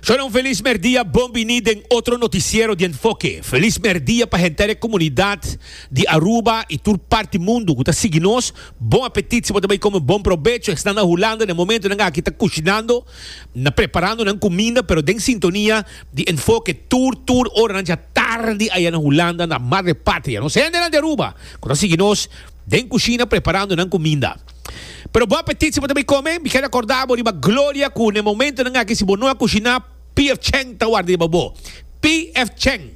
Sona un felis merdia, bon bini den otro noticiero di Enfoke. Felis merdia pa henter e comunidad di Aruba y tur parti mundo cu ta sigui nos. Bon apetit si bo ta bay come bon probecho esnan na Hulanda na e momento nan aki ta cushinando na preparando nan cuminda pero den sintonia di Enfoke tur tur oranan dja tardi aya na Hulanda na Madre Patria. Nos hendenan di Aruba cu ta sigui nos den cushina preparando nan cuminda. Pero bo apetit si bo ta bin kome? Mi keda korda bo riba gloria ku na e momentunan aki si bo no a kushiná Pier Cheng ta warda riba bo. PF Cheng,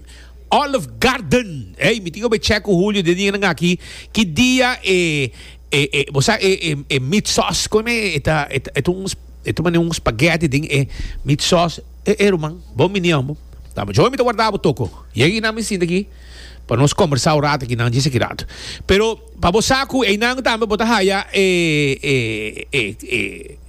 Olive Garden. Ey, mi tin obe chè ku Hulio den dianan aki ki dia e e e bo sa e e e meat sauce kon e e ta e ta un e ta mane un spaghetti den e meat sauce. E e ruman, bon bini amo. Ta mi ta warda bo toko. Yega aki nan mi sinta aki pa nos kombersá un rato aki nan dje sekidat. Pero Pa bo sa cu eynan tambe bo ta haya e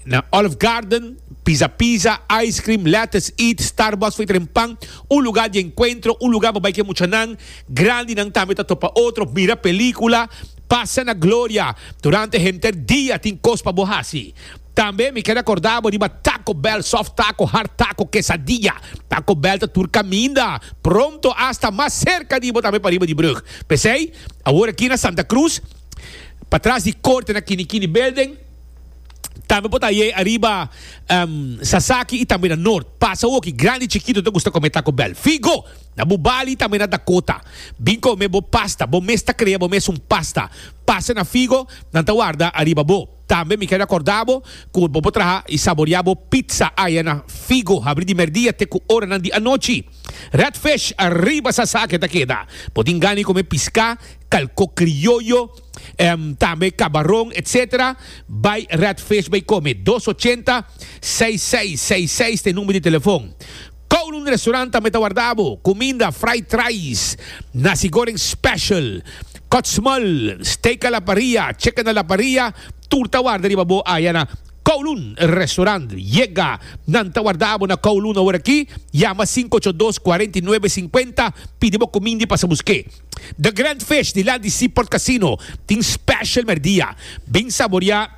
na Olive Garden, Pizza Pizza, Ice Cream, Lettuce Eat, Starbucks for y tren pan, un lugar di encuentro, un lugar pa bay cu e muchanan, grandinan tambe ta topa otro, mira pelicula, pasa na gloria, durante henter dia tin cos pa bo haci. Tambe mi keda corda bo riba Taco Bell, soft taco, hard taco, quesadilla, Taco Bell ta tur caminda, pronto asta mas cerca di bo tambe pa riba di brug, p'esey Awor aki na Santa Cruz, patras di Corte na Kini Kini Building, tambe por ta ayey ariba Sasaki y tambe na Noord. Pas awoki, grandi y chikito ta gusta come Taco Bell. Figo! Na bo Bali y tambe na Dakota, bin come bo pasta, bo mes ta crea bo mes un pasta. Pasa na Figo, nan ta warda ariba bo. Tambe mi ken recorda bo cu bo por traha y saborea bo pizza aya na Figo, habri di merdia te cu oranan di anochi. Redfish ariba sasa ke ta keda. Bo tin gana di come pisca, calco criollo, tambe cabaron etc. Bay Redfish bay come. Dos ochenta, seis seis seis seis ta e number di telefon. Kowloon Restaurant tambe ta warda bo. Cuminda, fried trais, nasi goreng special, kot's mol, steak a la parrilla, chicken a la parrilla, tur ta warda riba bo aya na. Kowloon Restaurant, yega! Nan ta warda abo na Kowloon awor aki, yama sinku ocho dos kuarenta i nuebe sinkuenta, pidi bo kumindi pa sa busk'é. The Grand Fish dilanti di Seaport Casino tin special merdia. Bin saboria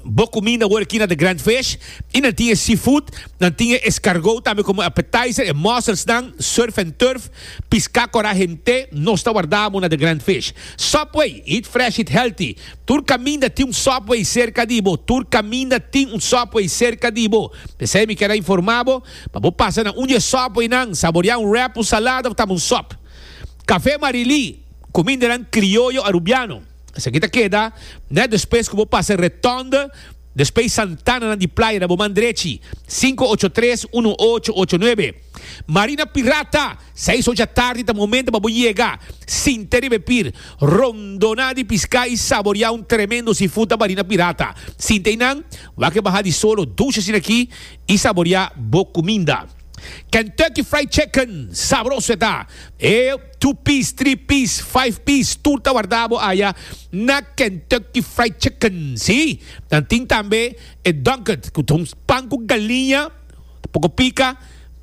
bo kuminda awor aki na The Grand Fish i nan tin e seafood, nan tin e escargot tambe komo appetizer, e mussels nan, surf and turf, piska kora hent'é, nos ta warda abo na The Grand Fish. Subway, eat fresh, eat healthy. Tur caminda tin un subway cerca di bo, tur caminda tin un subway cerca di bo. P'esey mi ker a informa bo, pa bo pasa na un di e subway nan, saborea un wrap, un salada of tambe un sop. Café Marilí, cumindanan crioyo Arubiano. Esaki ta keda net despues cu bo pasa Retonde, despey Santana nan di playa na bo man drechi, cinco ocho tres uno ocho ocho nuebe. Marina Pirata! Seis ocha tardi ta momento pa bo yega, sinta riba e pir, rondona di pisca y saboria un tremendo seafood ta barina pirata. Sinta eynan, wak e baha di solo dush asina aki y saboria bo cuminda. Kentucky Fried Chicken, sabroso e ta! E two piece, three piece, five piece tur ta warda bo aya na Kentucky Fried Chicken. Si, nan tin tambe e Dunked, cu ta un pan cu galiña. Ta poko pika,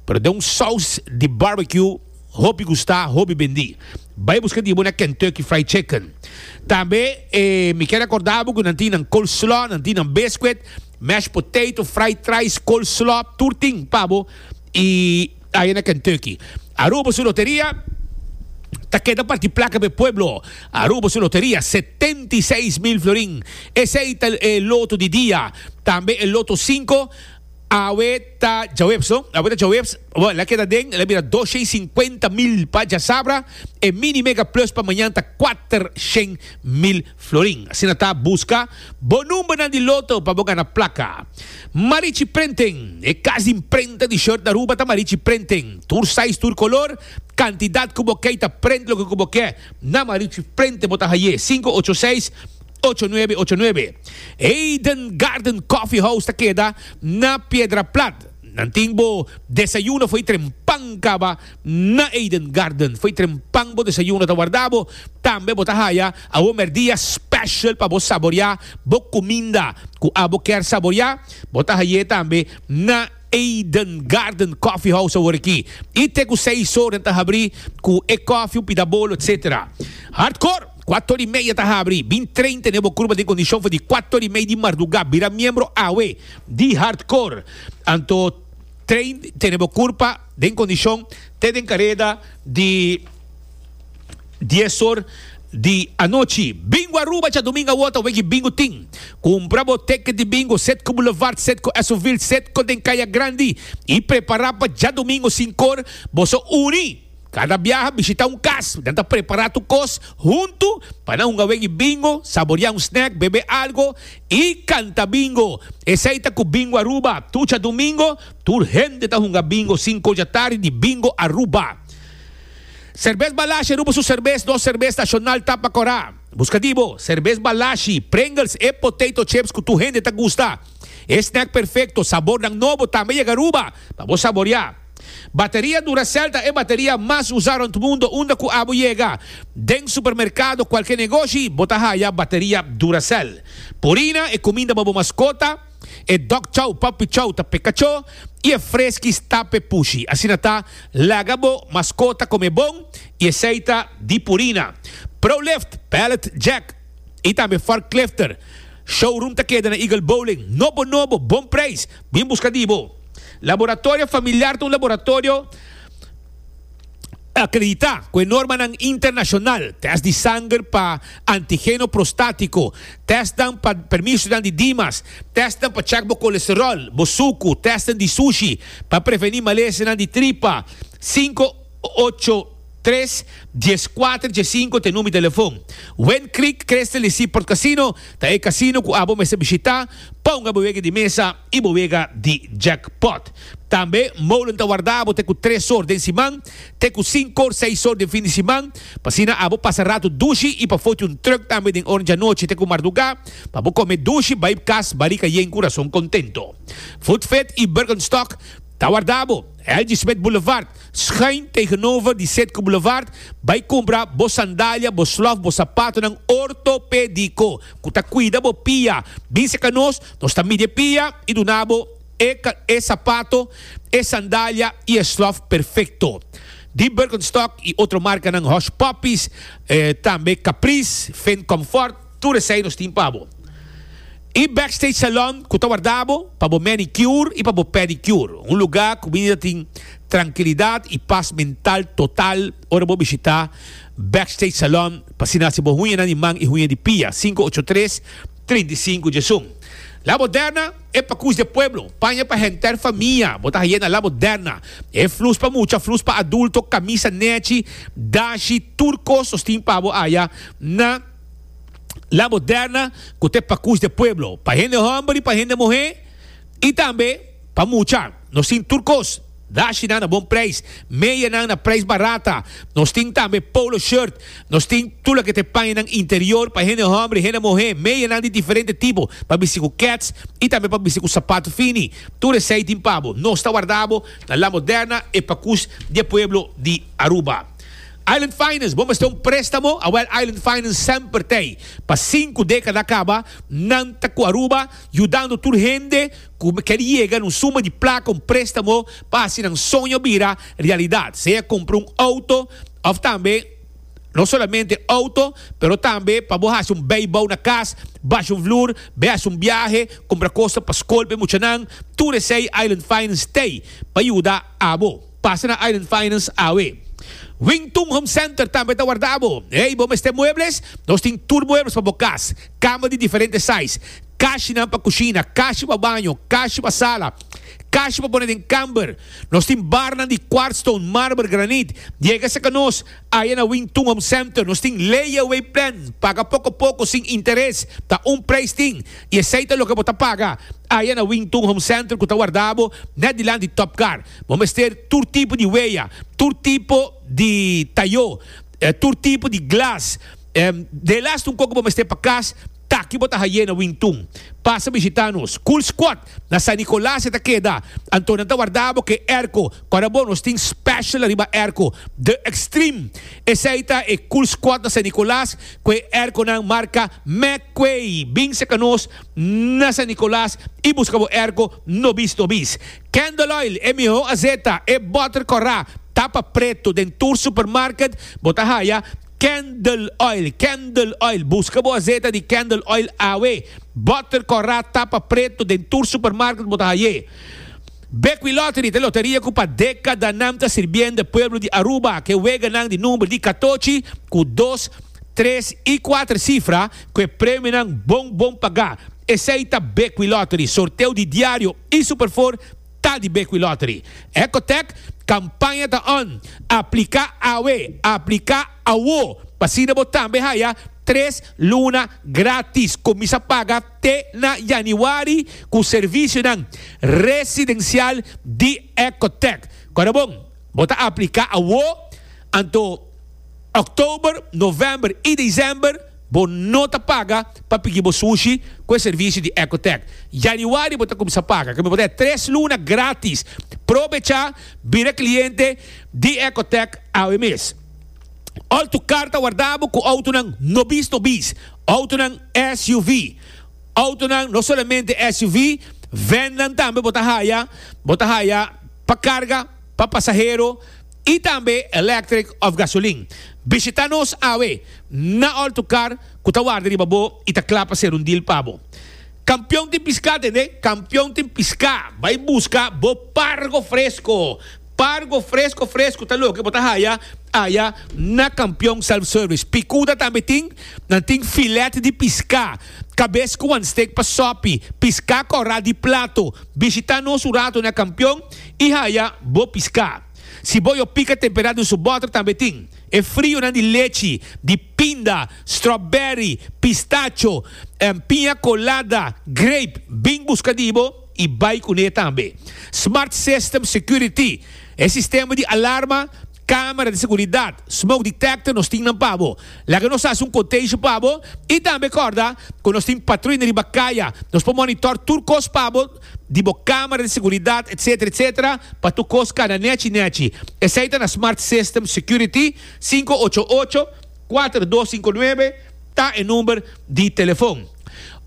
pero den un saus di barbecue hopi gusta, hopi bendi. Bai buska di bo na Kentucky Fried Chicken. Tambe e mi kier recorda bo cu nan tin nan coleslaw, nan tin nan biscuit, mashed potato, fried rice, coleslaw, tur tin pa bo y aya na Kentucky. Aruba su loteria ta keda parti placa pa e pueblo. Aruba su loteria setenta y seis mil florin. Esey ta e loto di dia, tambe e loto cinco. Awe ta djaweps no, awe ta djaweps, bo la keda den, la bira dos shen sinkuenta mil pa djasabra, e mini mega plus pa mañan ta kuater shen mil florin. Asina ta, buska bo numbernan di loto pa bo gana plaka. Marichi Printing, e kas di imprenta di short na Aruba ta Marichi Printing. Tur size, tur kolor, kantidat ku bo kei ta print loke ku bo ke, na Marichi Printing bo ta haye, sinku ocho seis. Ocho nuebe ocho nuebe. Eden Garden Coffee House ta keda na Piedra Plat. Nan tin bo desayuno fo'i trempan kaba na Eden Garden. Fo'i trempan bo desayuno ta warda bo. Tambe bo ta haya awor merdia special pa bo saboria bo cuminda cu abo kier saboria. Bo ta hay'e tambe na. Eden Garden Coffee House awor aki y te cu seis ora nan ta habri cu e coffee, un pida bolo etc. Hardcore, cuato ora y media ta habri. Bin train tene bo curpa den condicion for di cuato ora y media di marduga. Bira miembro awe di Hardcore. Anto train tene bo curpa den condicion te den careda di. dies or di anochi. Bingo Aruba cha dominga wota weki bingo tin. Kumpra bo teket di bingo set ku Boulevard set ku Esovil set ku den Kaya Grandi i prepará pa djadomingo sinkor bo so uni. Kada biaha bishita un kas, nan ta prepará tur kos huntu pa nan hunga weki bingo, saboriá un snack, bebe algo i kanta bingo. Esei ta ku Bingo Aruba, tur cha domingo tur hende ta hunga bingo sinku dja tardi di Bingo Aruba. Serbes Balashi ruba su serbes nos serbes nashonal ta pa Corá. Buska di bo, serbes Balashi, Pringles e potato chips ku tur hende ta gusta. E snack perfekto, sabornan nobo tambe a yega Aruba pa bo saboriá. Bateria Duracell ta e bateria mas usá rònt mundo unda ku abo yega. Den supermerkado, kualke negoshi, bo ta haya bateria Duracell. Purina e kuminda pa bo maskota. E dok chau papi chau ta peka cho y e freskis tape pushi. Asina ta, laga bo maskota kome bon y esei ta di Purina, Prolift, Pallet Jack y tambe Forklifter. Showroom ta keda na Eagle Bowling. Nobo nobo, bon prijs. Bin buska di bo. Laboratorio familiar ta un laboratorio. akreditá ku e normanan internashonal, tèst di sanger pa antigeno prostátiko, tèstnan pa permisonan di dimas, tèstnan pa chèk bo kolesteròl, bo suku, tèstnan di sushi pa prevení malesenan di tripa. Sinku ocho tres, dies kuater, dies sinku ta e number di telefon. Wind Creek Crystal Resort Casino ta e kasino ku abo mester bishitá. Ponga bo wege di mesa. i bo wega di jackpot. Tambe molen ta wardabo te ku tres or den siman te ku sinku or seis or den fin di siman, pa asina abo pasa ratu dushi i pa foti un truk tambe den oren djanochi te ku mardugá pa bo kome dushi bai kas barika yen ku rason kontento. Food Fit i Birkenstock ta wardabo L.G. Smith Boulevard, Schuin tegenover di Setco Boulevard, bai kumpra bo sandalia, bo slof, bo sapatonan ortopediko. ku ta kuida bo pia. Bin serka nos, nos ta midi e pia i duna bo e e sapato, e sandalia i e slòf perfekto. Di Birkenstock i otro markanan Hush Puppies, tambe Caprice, Finn Comfort, tur esei nos tin pa bo. E Backstage Salon ku ta warda bo pa bo manicure i pa bo pedicure. Un lugá ku mi ta tin trankilidat i pas mental total ora bo bishitá. Backstage Salon pa asina hasi bo huñanan di man i huña di pia, sinku ocho tres, trinta i sinku dje sun. La Moderna, e pakus di e pueblo, paña pa henter famia, bo ta haye na La Moderna. E flus pa mucha, flus pa adulto, kamisa nechi, dashi, tur kos nos tin pa bo aya na La Moderna ku ta e pakus di e pueblo, pa hende hòmber i pa hende muhé i tambe pa mucha, nos tin tur kos. Dashinan a bon prijs. Medianan na prijs barata. Nos tin tambe polo shirt. Nos tin tur loke ta e pañanan interior pa hende homber, hende muhe. Medianan di diferente tipo, pa bisti ku kets i tambe pa bisti ku sapat fini. Tur esei tin pa bo. Nos ta warda bo na La Moderna, e pakus di e pueblo di Aruba. Island Finance, bo mester un prestamo? Awel, Island Finance semper t'ei. Pa sinku dekada a kaba, nan ta ku Aruba, yudando tur hende. Cu mi ker yega na un suma di placa, un prestamo, pa haci nan soño bira realidad, sea cumpra un auto of tambe no solamente auto, pero tambe pa bo haci un bay bou na cas, basha un vloer, bay haci un biahe, cumpra cosnan pa scol pa e muchanan, tur esey Island Finance ta ey pa yuda abo. Pasa na Island Finance awe. Wington Home Center tambe ta warda abo. Ey, bo mester muebles? Nos tin tur muebles pa bo cas. Kamer di diferente sais, kashinan pa kushina, kashi pa baño, kashi pa sala, kashi pa pone den kamber. Nos tin barnan di kwartstone, marber, granit. Yega serka nos, aya na Wing Tun Home Center, nos tin layaway plan, paga poko poko sin interes, ta un prijs tin i esei ta loke bo ta paga aya na Wing Tun Home Center ku ta warda bo nèt dilanti di Top Car. Bo mester tur tipo di weya, tur tipo di tayo, tur tipo di glas. De last un koko bo mester pa kas taki bo ta haye na Wintun. Pasa bishita nos. Cool Squad na San Nicolas e ta keda. Anto nan ta warda bo ke airco. Ora bo nos tin special riba airco. The Extreme. Esey ta e Cool Squad na San Nicolas ku e airconan marca McQuay. Binse ka nos na San Nicolas y buska bo airco no bis no bis. Candle Oil e miho azeta, e butter kora, tapa preto den tur supermarket bo ta haya. Candel oil Candel oil Busca bo azeta di candel oil awe Botter corra tapa preto Den tur supermarket bo ta haye Bekwee Lottery ta loteria cu pa decadanan ta sirbiende pueblo di Aruba Ke weganan di number di catochi cu dos, tres y cuater cifra cu e premionan bon bon paga Esey ta Bekwee Lottery Sorteo di diario y superfor ta di Bequi Lottery. Ecotech campaña ta on, aplica awe, aplica awo, p'asina bo tambe haya tres luna gratis, cuminsa paga te na Januari cu servicionan residencial di Ecotech. Cora bon, bo ta aplica awo, anto October, November y December, Bo no ta paga pa pigi bo sushi ku e servisio di Ecotec. Yanüari bo ta kumsa paga. Ke mi bo ta e tres luna grátis. Probechá bira kliente di Ecotec awe mes. Òltu karta wardabo ku outonan no bis no bis. Outonan SUV. Outonan no solamente SUV, vènnan tambe bo ta haya. Bo ta haya pa karga, pa pasahero. y tambe electric of gasoline. Bishita nos awe na all to car cu ta warda riba bo y ta cla pa ser un deal pa bo. Campeon tin pisca, tende? Campeon tin pisca! Bay busca bo pargo fresco. Pargo fresco fresco ta loke bo ta haya aya na Campeon Self Service. Picuda tambe tin, nan tin filet di pisca, cabes cu wan steak pa sopi, pisca cora di plato. Bishita nos un rato na Campeon. I haya bo piská. Si bo yo pika temperá den su bòter tambe tin. E frionan di lechi, di pinda, strawberry, pistacho, piña colada, grape, bin buska di bo i bai kuné tambe. Smart System Security, e sistema di alarma, kámara di seguridat, smoke detector nos tin nan pa bo. Laga nos hasi un kontesho pa bo i tambe kòrda ku nos tin patruina riba kaya. Nos por monitor tur kos pa bo. di bo camera di seguridad etc etc pa tur cos cana nechi nechi esai ta na smart system security sinku ocho ocho kuater dos sinku nuebe ta e number di telefon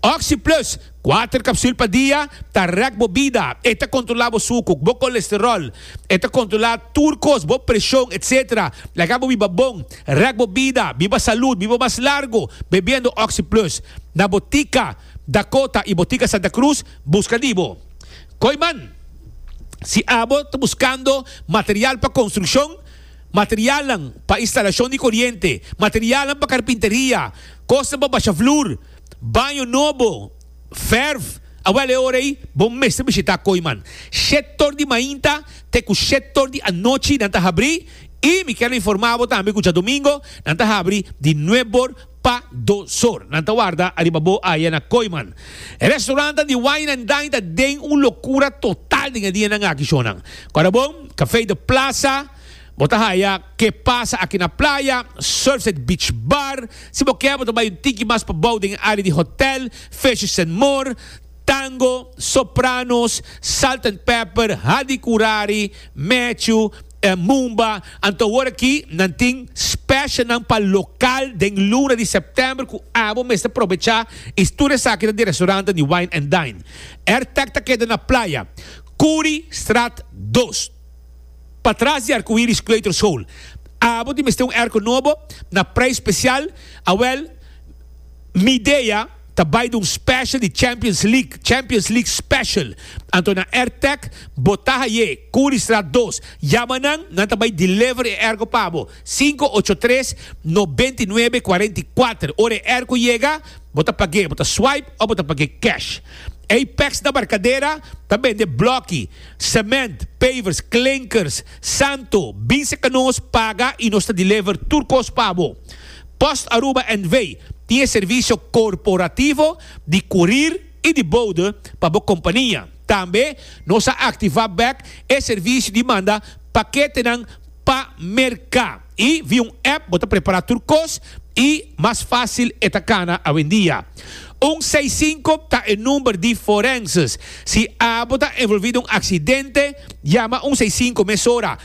oxi plus kuater capsul pa dia ta rek bo bida e ta controla bo suku bo colesterol e ta controla tur cos bo presion etc laga bo biba bon rek bo bida biba salud biba mas largo bebiendo oxi plus na bo tica. Dakota y Botica Santa Cruz busca di bo. Koiman, Si abo ta buscando material pa construccion, materialnan pa instalacion di coriente, materialnan pa carpinteria, cosnan pa basha vloer, baño nobo, verf, awel e ora ey bo mester bishita Koiman. Shetor di mainta te cu shetor di anochi nan ta habri y mi kier informa bo tambe cu djadomingo nan ta habri di nuebor pa do sor. Nan ta warda ariba bo aya na Kooiman. E restaurantan di wine and dine ta den un locura total den e dianan aki shonan. Corabon, Café de Plaza, Bo ta haya Ke Pasa Aki na Playa, Surfside Beach Bar, si bo kier bo ta bai un tiki mas pabou den e area di hotel, Fishes and More, Tango, Sopranos, Salt and Pepper, Hadi Curari, Matthew, E Mumba anto awor aki nan tin specialnan pa local den luna di september cu abo mester probecha y stur esaki na di restaurantnan di wine and dine. Airtech ta keda na Playa Curi straat dos patras di Arcoiris Kleuterschool. Abo tin mester un airco nobo na prijs special, awel mi idea. Ta bai di un special di Champions League, Champions League Special. Anto na Airtech, bo ta haye, Curriestraat dos. Yama nan, nan ta bai deliver e airco pa bo. Sinku ocho tres, noventa i nuebe, kuarenta i kuater. Ora e airco yega, bo ta pag'e, bo ta swipe of bo ta pag'e cash. Apex na Barcadera ta bende blokki, cement, pavers, klinkers, santo. Bin serka nos, paga i nos ta deliver tur kos pa bo. Post Aruba NV. tin e servisio korporativo di kurir i di boude pa bo kompania. Tambe nos a aktivá bèk e servisio di manda paketenan pa merká i via un app bo ta prepará tur kos i mas fásil e ta kana awendia. Un seis sinku ta e number di forenses. Si abo ta envolví den un aksidente, yama un seis sinku mesora.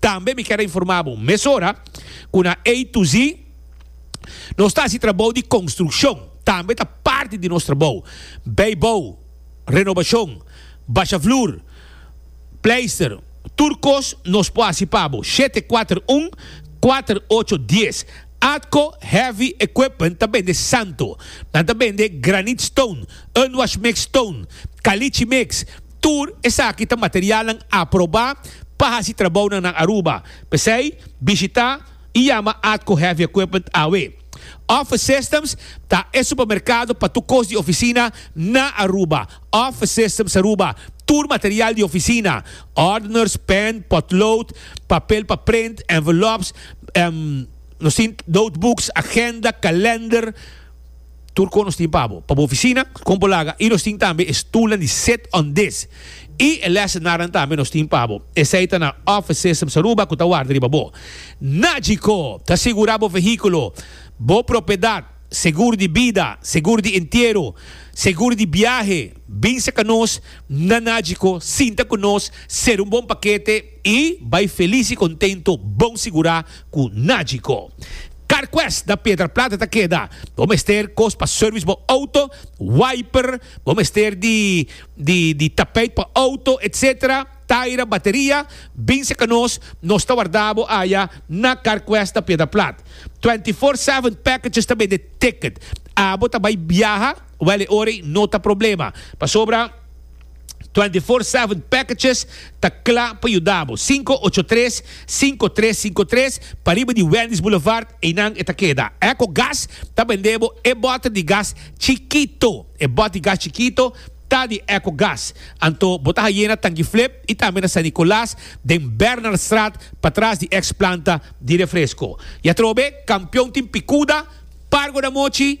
Tambe mi kier a informa bo mesora cu na A to Z nos ta haci trabou di construccion, tambe ta parti di nos trabou, bijbou, renobacion, basha vloer, pleister, tur cos nos por haci pa bo, shete kuater un, kuater ocho dies. Atco Heavy Equipment ta bende santo, nan ta bende granite stone, unwash mix stone, caliche mix, Tur esaki ta materialnan aprobá pa hasi trabounan na Aruba, p'esei bishitá i yama Atco Heavy Equipment AW. Office Systems ta e supermerkado pa tur kos di ofisina na Aruba. Office Systems Aruba, tur material di ofisina, ordeners, pen, potlood, papel pa print, envelopes, nos tin notebooks, agenda, kalender, Tur kon nos tin pa bo, pa bo ofisina, kon bo laga, i nos tin tambe e stulnan di sit on dis i e lesenarenan tambe nos tin pa bo. Esei ta na Office Systems Aruba ku ta warda riba bo. Nagico ta sigurá bo vehíkulo, bo propiedat, segur di bida, segur di entiero, segur di biahe. Bin serka nos na Nagico sinta ku nos ser un bon pakete. I bai felis i kontento bon sigurá ku nadji ko. Carquest na Piedra Plata ta keda. Bo mester kos pa service bo outo, wiper, bo mester di di tapijt pa outo etc. Taira, bateria, binse ka nos, nos ta warda bo aya na Carquest na Piedra Plat. Twenty four seven packages ta bende ticket. Abo ta bai biaha, wèl e ora ei no ta problema. Pasobra. Twenty Four Seven Packages ta kla pa yuda bo. Sinku ocho tres, sinku tres sinku tres, pariba di Wendy's Boulevard, einan e ta keda. Echo Gas ta bende bo e bòter di gas chikito. E bòt di gas chikito ta di Echo Gas. Anto bo ta haye na Tanki Flip i tambe na San Nicolas den Bernardstraat patras di eks planta di refresko. I atrobe, Kampion tin pikuda, Pargo da Mochi,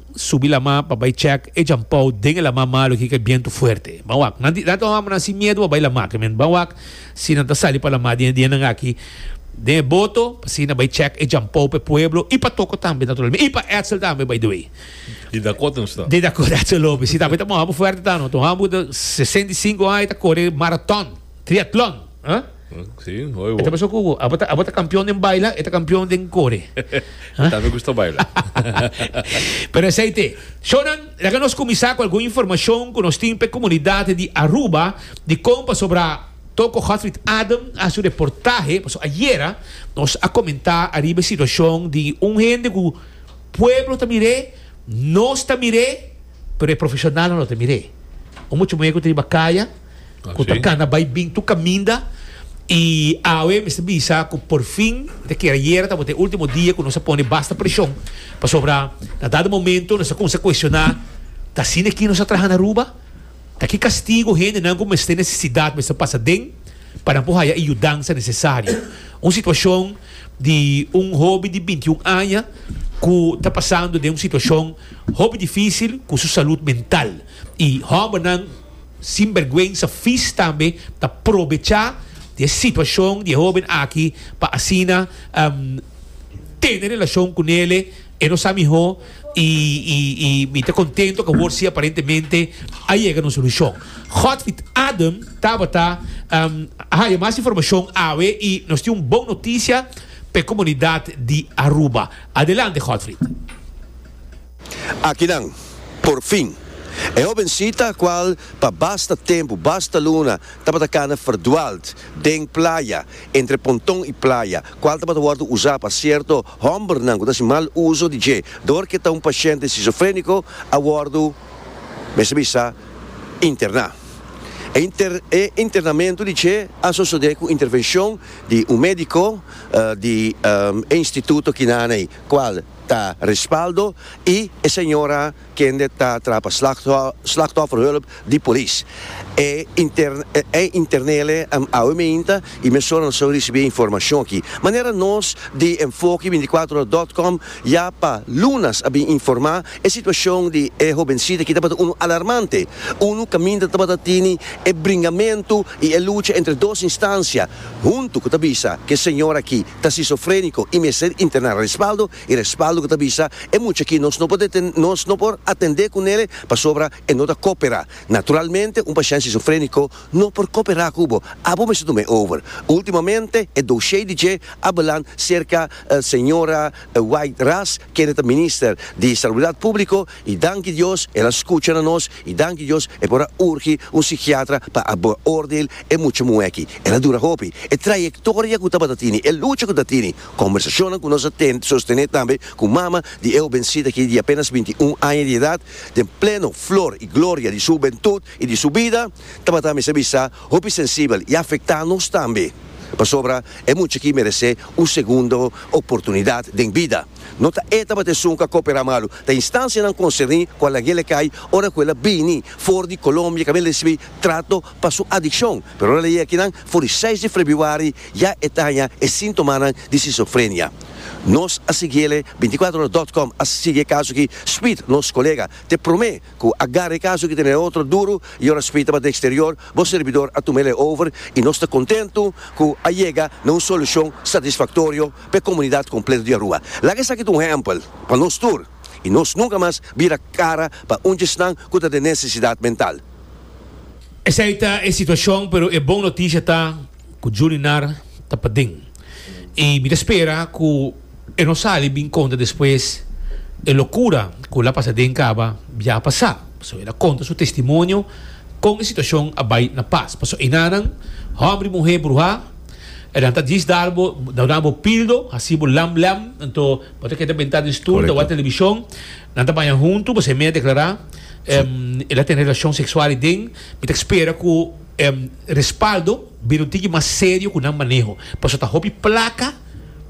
subi lama pa bai chèk e djampou den e lama malu aki ku e bientu fuerte. Ban wak, nan nan ta hopi hombrenan sin miedu pa bai lama aki men. Ban wak si nan ta sali pa lama den e dianan aki den e boto pa asina bai chèk e djampou pa e pueblo i pa Toko tambe naturalmente i pa Etzel tambe by the way. Di Dakota nos ta. Di Dakota Etzel Lopez, si tambe ta un homber fuerte ta no. Ta un homber ku ta sesenta i sinku aña i ta kore maraton, triatlon, ah. Sí, hoy bo. E ta pasó cu abo ta, abo ta campeón den baila, e ta campeón den core. Yo también me gusta bailar. Pero esei te. Shownan, laga nos cuminsa cu algun informacion cu nos tin p'e comunidad di Aruba di con pasobra Toko Godfried Adam a haci un reportahe, paso ayera nos a comenta ariba e situacion di un hende cu pueblo ta mir'é, nos ta mir'é, Pero e profesionalnan lo ta mir'é. Un mucha muhé ku ta riba kaya, ku ta kana bai i bin tur kaminda. I awe e mester bisa ku porfin, ta kere ayera tabata e último dia ku nos a pone basta preshon, pasobra na dado momento nos a kuminsá kuestioná, Ta asina aki nos a traha na Aruba? Ta ki kastigu hendenan ku mester nesesidat mester pasa den pa nan por haya e yudansa nesesario? Un situashon di un hoben di binti un aña ku ta pasando den un situashon Hopi difisil cu su salud mental y hombernan sinbergüenza vis tambe ta probecha di e situacion di e hoben aki pa asina tene relacion cu nele. E no sa miho y y mi ta contento cu awor si aparentemente a yega na un solucion. Godfried Adem tabata a haya mas informacion awe y nos tin un bon noticia p'e comunidad di Aruba. Adelante Godfried. Akinan, por fin, e hobencita cual pa basta tempu, basta luna tabata cana verdwaald den playa, entre ponton y playa, cual tabata wordo uza pa cierto hombernan cu ta haci mal uzo di dje door cu e ta un paciente schizofrenico, a wordo, mester bisa, interna. E internamento di dje a sosode cu intervencion di un medico, di e instituto kinan ei cual ta respaldo y e señora kende ta traha pa slachtofferhulp di polis. E internele awe mainta y mesora nos a ricibi e informacion aki. Manera nos di Enfoki binticuatro ora dot com ya pa lunas a bin informa e situacion di e hobencita aki tabata unu alarmante, unu caminda tabata tini e bringamento y e lucha entre dos instancia, Huntu ku ta bisa ku e señor aki ta sisofréniko i mester interná respaldo i respaldo ku ta bisa e mucha aki nos no por nos no por atendé ku nel pasobra e no ta koperá. Naturalmente un pashènt sisofréniko no por koperá ku bo, abo mester tuma e over. Ultimamente e doshei di dje a balan serka señora White Ras kende ta minister di Salubridat Públiko, I danki Dios el a skucha na nos, i danki Dios e por a urgi un sikiatra pa a beordeel e mucha muhé aki. El a dura hopi. E trayektoria ku tabata tini, e lucha ku ta tini, kombersashonnan ku nos a tende, sostené tambe ku mama di e hobencita aki di apénas binti i un aña di edat, den pleno flor i gloria di su hubentut i di su bida, tabata mester bisa hopi sensibel i afektá nos tambe. Pasobra e mucha aki meresé un segundo oportunidat den bida. No ta e tabata esun ku a koperá malu. Ta instansianan konserní ku a lag'é lekay ora ku el a bini for di Kolombia kaminda el a risibí trato pa su adikshon. Pero ora el a yega akinan for di seis di frebruari ya e ta haña e síntomanan di skisofrenia. Nos a sigui el e binticuatrohora dot com a sigui e kaso aki. Speed, nos kolega, ta e promé ku a gara e kaso aki tene otro duru i ora Speed tabata den eksterior bo serbidor a tuma el e over i nos ta kontentu ku a yega na un solushon satisfaktorio. p'e komunidat kompleto di Aruba. Laga esaki ta un ehèmpel pa nos tur i nos nunka mas bira kara pa un djisnan ku ta den nesesidat mental. Esei ta e situashon pero e bon notisha ta ku Julinar ta paden i mi ta spera ku e no sali bin konta despues e lokura ku el a pasa den kaba bia a pasa pasobra el a konta su testimonio kon e situashon a bai na pas pasobra enanan hòmber i muhé bruhá E nan ta djis dar bo, ta duna bo pildo, haci bo lam lam, anto bo ta keda benta den stoel, ta wak television, nan ta baña hunto, bo semey a declara, em, el a tene relacion sexual ey den, mi ta spera cu, em, respaldo bira un tiki mas serio cu nan maneho, pasobra ta hopi placa